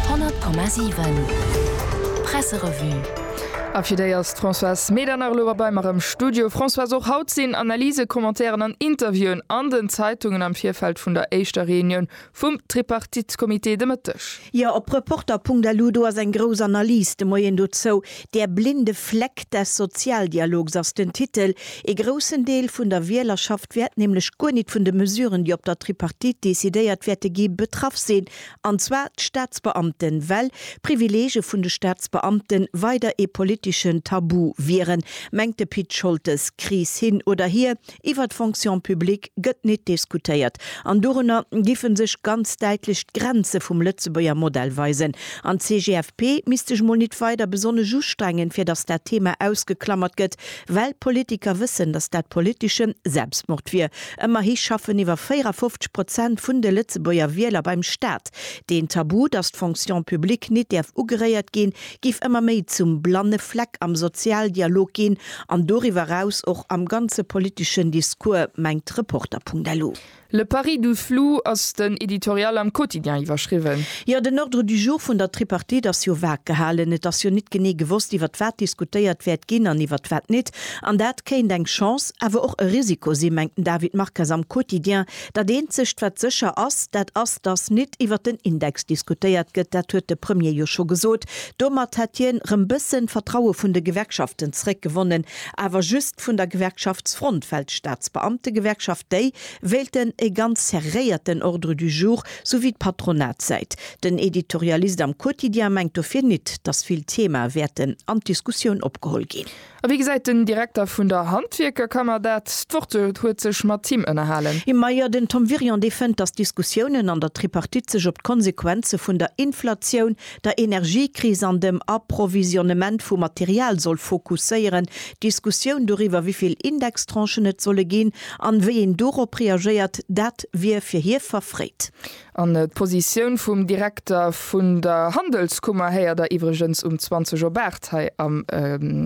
100,7 Presserevue A fir déi ass d'Françoise Medernach elo erbei mer am Studio. Françoise, och haut sinn Analysen, Commentairen an Interviewen an den Zeitungen am Virfeld vun der éischter Reunioun vum Tripartite-Comité de Mëtteg. Jo, op Reporter.lu, do ass eng grouss Analys de Moien dozou. Der blinde Fleck des Sozialdialogs ass den Titel. Ee groussen Deel vun der Wielerschaft wäert nämlech guer nit vun de Mesuren, déi op der Tripartite decidéiert wäerte gi, betraff sinn, an zwar d'Staatsbeamten, well d'Privilege vun de Staatsbeamte weider ee politeschen Tabu wieren, mengt de Pit Scholtes. Kris hin oder hier, Iwwer d'Fonction publique gëtt nit diskutéiert an dorunner giffe sech ganz däitlech d'Grenze vum Lëtzebuerger Modell weisen. An d'CGFP misst sech mol nit weider besonnesch ustrengen, fir datt dat Thema ausgeklammert gëtt, well d'Politiker wëssen, datt dat politeschen Selbstmord wier. Ëmmerhi schaffen iwwer 54 Prozent vun de Lëtzebuerger Wieler beim Staat. Deen Tabu, datt d'Fonction publique nit däerf ugeréiert ginn, giff ëmmer méi zum blanne Fleck am Sozialdialog ginn an doriwwer eraus och am ganze politeschen Discours, mengt d'Reporter.lu. Le pari du flou ass den Editorial am Quotidien iwwerschriwwen. Jo, den Ordre du jour vun der Tripartite ass jo vague gehalen. Et ass jo nit genee gewosst, iwwert wat diskutéiert wäert ginn an iwwert wat nit. An dat kéint eng Chance, awer och e Risiko si, mengt den David Marques am Quotidien. Dat eenzegt wat sécher ass, dat ass, datt nit iwwert den Index diskutéiert gëtt, dat huet de Premier jo scho gesot. Domat hätt hien rëm bëssen d'Vertraue vun de Gewerkschaften zréckgewonnen, awer just vun der Gewerkschaftsfront, well d'Staatsbeamtegewerkschaft, déi wéilten e ganz serréierten Ordre du jour, sou wéi d'Patronatssäit. Den Editorialist am Quotidien mengt dofir nit, datt vill Themae wäerten an d'Diskussioun opgeholl ginn. A wéi gesäit den Direkter vun der Handwierkerkammer dat? D'Wort huet sech mat him ënnerhalen. Mme Meier, Den Tom Wirion, dee fënnt, datt d'Diskussiounen an der Tripartite sech op d'Konsequenze vun der Inflatioun, der Energiekris an dem Approvisionnement vu Material soll fokusséieren. D'Diskussioun doriwwer, wéivill Indextranchen et solle ginn an wéi een dorop reagéiert, dat wier fir hie verfréit. An d'Positioun vum Direkter vun der Handelskummer héiert der iwwregens um 20 op 8 hei am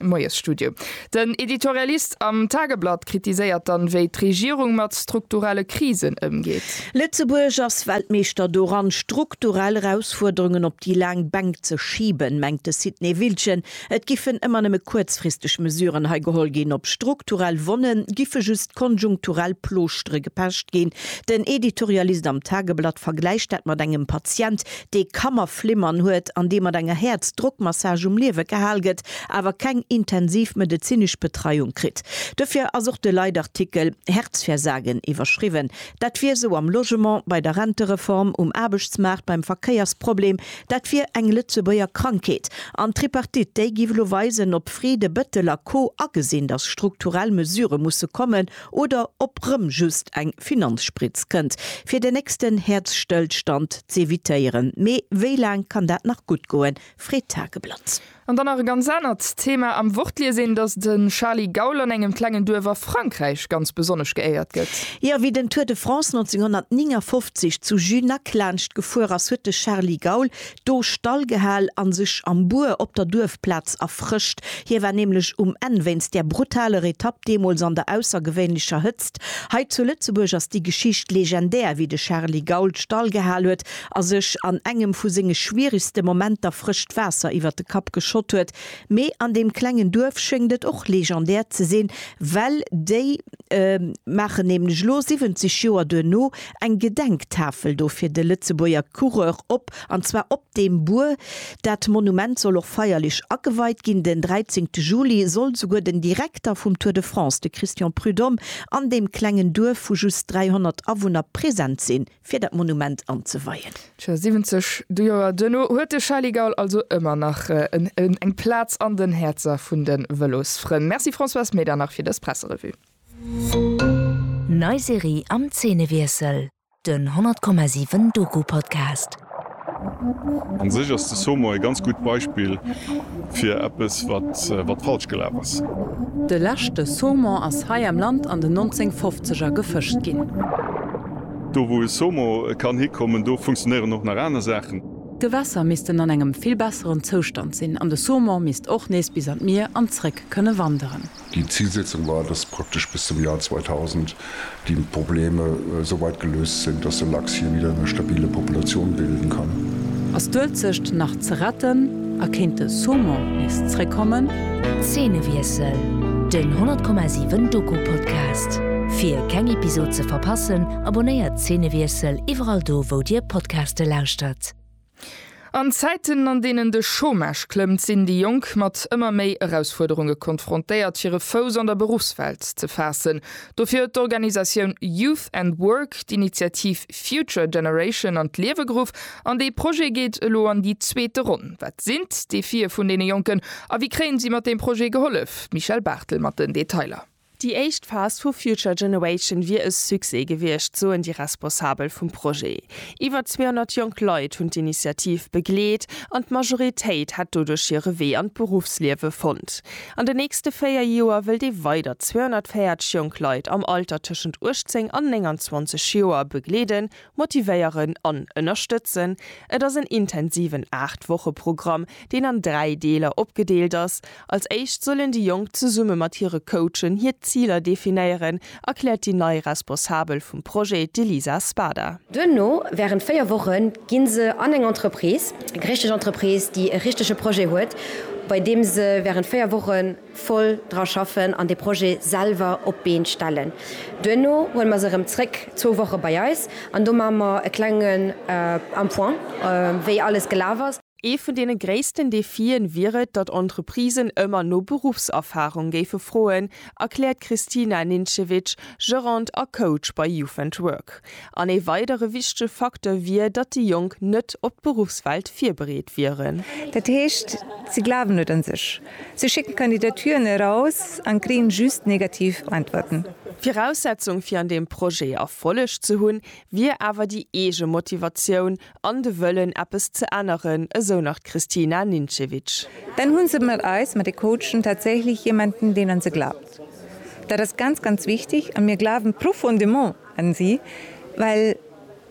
Moiesstudio. Den Editorialist am Tageblatt kritiséiert dann, wéi d'Regierung mat strukturelle Krisen ëmgeet. Lëtzebuerg ass Weltmeeschter doran, strukturell Erausfuerderungen op déi laang Bänk ze schiben, mengt de Sidney Wiltgen. Et giffen ëmmer nëmme kuerzfristeg Mesuren hei geholl ginn. Op strukturell Wonne giffe just konjunkturell Ploschtere gepecht ginn. Den Editorialist am Tageblatt vergläicht dat mat engem Patient, dee Kammerflimmern huet an dee mat enger Häerzdrockmassage um Liewe gehal gëtt, awer keng intensiv medezinesch Betreiung kritt. Dofir ass och de Leitartikel Herzversagen iwwerschriwwen. Dat wier esou am Logement, bei der Rentereform, um Aarbechtsmaart, beim Verkéiersproblem, Dat wier eng Lëtzebuerger Krankheet. An d'Tripartite, déi giff elo weisen, ob Friede, Bettel a Co agesinn, datt strukturell Mesure musse kommen, oder ob rëm just eng Finanzspritz kënnt, fir den nächsten Häerzstëllstand z'evitéieren. Mee wéi laang kann dat nach gutt goen? freet d'Tageblatt. An dann nach e ganz anert Thema, Am Wort liest een, dass de Charly Gaul an engem klengen Duerf a Frankräich ganz besonnesch geéiert gëtt. Jo, wéi den Tour de France 1959 zu Junac laanscht gefuer ass, huet de Charly Gaul do Stall gehal a sech am Buer op der Duerfplaz erfrëscht. Hie war nämlech um Enn wéinst där brutaler Etapp deemools an der aussergewéinlecher Hëtzt. Hei zu Lëtzebuerg ass déi Geschicht legendär, wéi de Charly Gaul Stall gehal huet a sech an engem vu senge schwierigste Momenter frëscht Waasser iwwert de Kapp geschott huet, mee an deem klengen Duerf schéngt et och legendär ze sinn, well déi maachen nämlech lo 70 Joer duerno eng Gedenktafel do fir de Lëtzebuerger Coureur op, an zwar op deem Buer. Dat Monument soll och feierlech ageweit ginn, den 13 Juli soll souguer den Direkter vum Tour de France, de Christian Prud'homme, an deem klengen Duerf vu just 300 Awunner present sinn. fir dat Monument anzeweien. Tjo, 70 Joer duerno huet de Charly Gaul also ëmmer nach eng Plaz an den Häerzer vun de Vëlosfrënn. Merci Françoise Medernach fir dës Presserevue. Nei Serie am Zeenewiessel, den 100,7 Doku-Podcast. An sech ass de Somo e ganz gutt Beispill fir eppes wat falsch gelaf ass. De leschte Saumon ass hei am Land an den 1950er gefëscht ginn. Do wou e Somo kann hikommen, do funktionéieren och nach aner Saachen. D'Gewässer missten an engem vill besseren Zoustand sinn an de Saumon misst och nees bis an d'Mier an zréck kënne wanderen. Déi Zilsetzung war, dass praktesch bis zum Joer 2000 déi Probleme esou weit geléust sinn, dass de Lachs hie wieder eng stabile Populatioun bilden kann. Ass d'Uelzecht nach ze retten a kéint de Saumon nees zréckkommen? Zeenewiessel, Den 10,7 Doku-Podcast. Fir keng Episod ze verpassen, abonnéiert Zeenewiessel iwwerall do wou dir Podcaste lauschtert. An Zäiten, an deenen de Chômage klëmmt, sinn déi Jonk mat ëmmer méi Erausfuerderunge konfrontéiert, hire Fouss an der Beruffswelt ze faassen. Dofir huet d'Organisatioun Youth and Work d'Initiativ Future Generation an d'Liewe geruff. An dee Projet geet elo an déi zweete Ronn. Wat sinn d'Defie vun deene Jonken a wéi kréien si mat deem Projet gehollef? D'Michèle Barthel mat den Detailer. Déi éischt Phas vu Future Generation wier e Succès gewiescht, soen déi Responsabel vum Projet. Iwwer 200 jonk Leit hunn d'Initiativ begleet an d'Majoritéit hätt doduerch hire Wee an d'Beruffsliewe fonnt. An den nächste véier Joer wëllt ee weider 240 jonk Leit am Alter tëschent 18 an 29 Joer begleeden, Motivéieren an ënnerstëtzen, Et ass en intensiven 8 Woche Programm, deen an 3 Deeler opgedeelt ass. Als éischt sollen déi Jonk zesumme mat hire Coachen hir Ziler definéieren, erkläert déi nei Responsabel vum Projet, d'Elisa Spada. Duerno, wärend 4 Woche gi se an eng Entreprise, eng richteg Entreprise, déi e richtege Projet huet, bei deem se wärend 4 Wochen, voll dra schaffen an de Projet selwer op d'Been stellen. Duerno huele mer se erëm zréck zwou Woche bei eis an do maache mer e klenge en Point, wéi alles gelaf ass. Ee vun deene gréissten Defien wier et, datt Entreprisen ëmmer no Beruffserfarung géife froen, erkläert d'Kristina Nincevic, Gerant a Coach bei Youth and Work. An ee weidere wichtege Facteur wier, datt déi Jonk net op d'Beruffswelt virbereet wieren. Dat heescht, si glawen net un sech. Si schécken Kandidaturen eraus an kréien just negativ Äntwerten. Viraussetzung fir an deem Projet Erfolleg ze hunn, wier awer déi eege Motivatioun an de Wëllen eppes ze änneren, esou nach d'Kristina Nincevic. Dann hunn se mat eis, mat de Coachen, tatsächlech jemanden, deen an se glaubt. Dat ass ganz, ganz wichteg a mir glawen profondément, an si well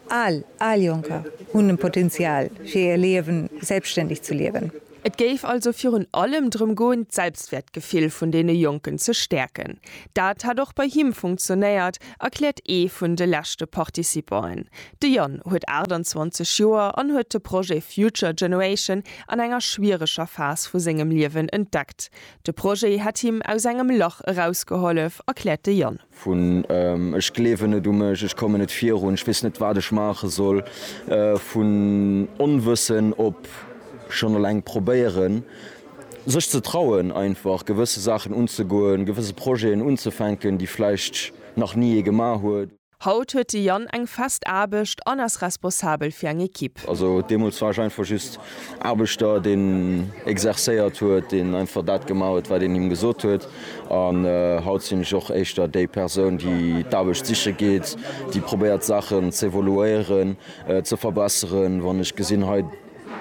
all, all Jonker hunn en Potenzial fir hir Liewen selbstständig ze liewen. Et géif also virun allem drëm goen d'Selbstwäertgefill vun deene Jonken ze stäerken. Dat hätt och bei him funktionéiert, erkläert ee vun de leschte Participanten. De Yann huet 28 Joer an huet de Projet Future Generation an enger schwiereger Phas vu sengem Liewen entdeckt. De Projet hätt him aus engem Lach erausgehollef, erkläert de Yann. vun ech gleewen net u mech, ech kommen net virun, ech weess net wat ech maache soll, vun Onwëssen op schonn eleng probéieren sech ze trauen einfach gewësse Saachen unzegoen, gewësse Projeten unzefänken, déi vläicht nach ni ee gemaach huet. Haut huet de Yann eng fest Aarbecht an ass responsabel fir eng Ekipp. Also deemools war ech einfach just Aarbechter, deen exercéiert huet, deen einfach dat gemaach huet, wat een him gesot huet. An haut sinn ech och éischter déi Persoun, déi d'Aarbecht siche geet, déi probéiert d'Saachen z'evoluéieren, ze verbesseren. Wann ech gesinn, hei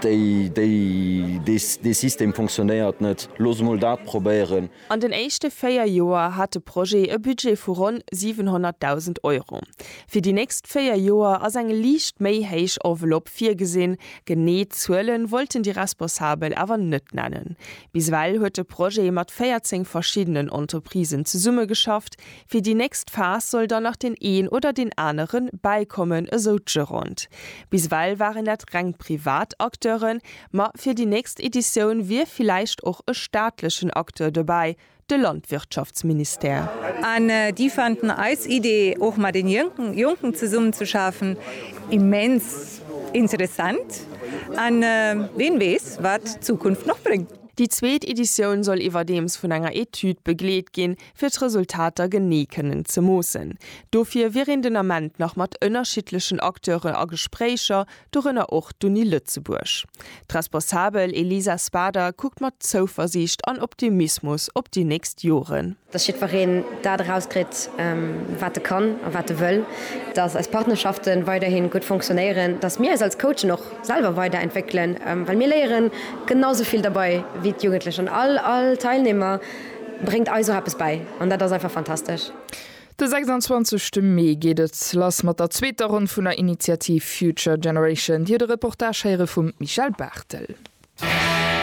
déi, déi, dee System funktionéiert net, looss emol dat probéieren. An den éischte véier Joer hat de Projet e Budget vu ronn 700.000 Euro. Fir déi nächst véier Joer ass eng liicht méi héich Enveloppe virgesinn. Genee Zuele wollten déi Responsabel awer net nennen. Bis ewell huet de Projet mat 14 verschiddenen Entreprisen zesummegeschafft, Fir déi nächst Phas soll dann nach deen een oder deen anere bäikommen, esou d'Gerond. Bis ewell waren dat reng privat Acteuren, ma fir déi nächst Editioun wier villäicht och e staatlechen Acteur dobäi, de Landwirtschaftsministère. An déi fanden eis Idee, och mat den Jonken zesummen ze schafen, immens interessant. An ween weess, wat d'Zukunft nach bréngt. Déi zweet Editioun soll iwwerdeems vun enger Etüd begleet ginn, fir d'Resultater genee kënnen ze moossen. Dofir wier een den Ament nach mat ënnerschiddlechen Acteure a Gespréicher, dorënner och d'Uni Lëtzebuerg. D'Responsabel Elisa Spader kuckt mat Zouversiicht an Optimismus op déi nächst Joren. Dass jiddwereen dat erauskritt, wat e kann a wat e wëll. Dass eis Partnerschaften weiderhin gutt fonctionnéieren. Dass mir eis als Coachen och selwer weider entwéckelen, well mir léieren genau esou vill derbei wéi d'Jugendlech an all Teilnehmer. Bréngt eis och eppes bäi an dat ass einfach fantastesch. De 26 te Mee geet et lass mat der zweeter Ronn vun der Initiativ Future Generation. Dir de Reportage héiere vum Michel Barthel.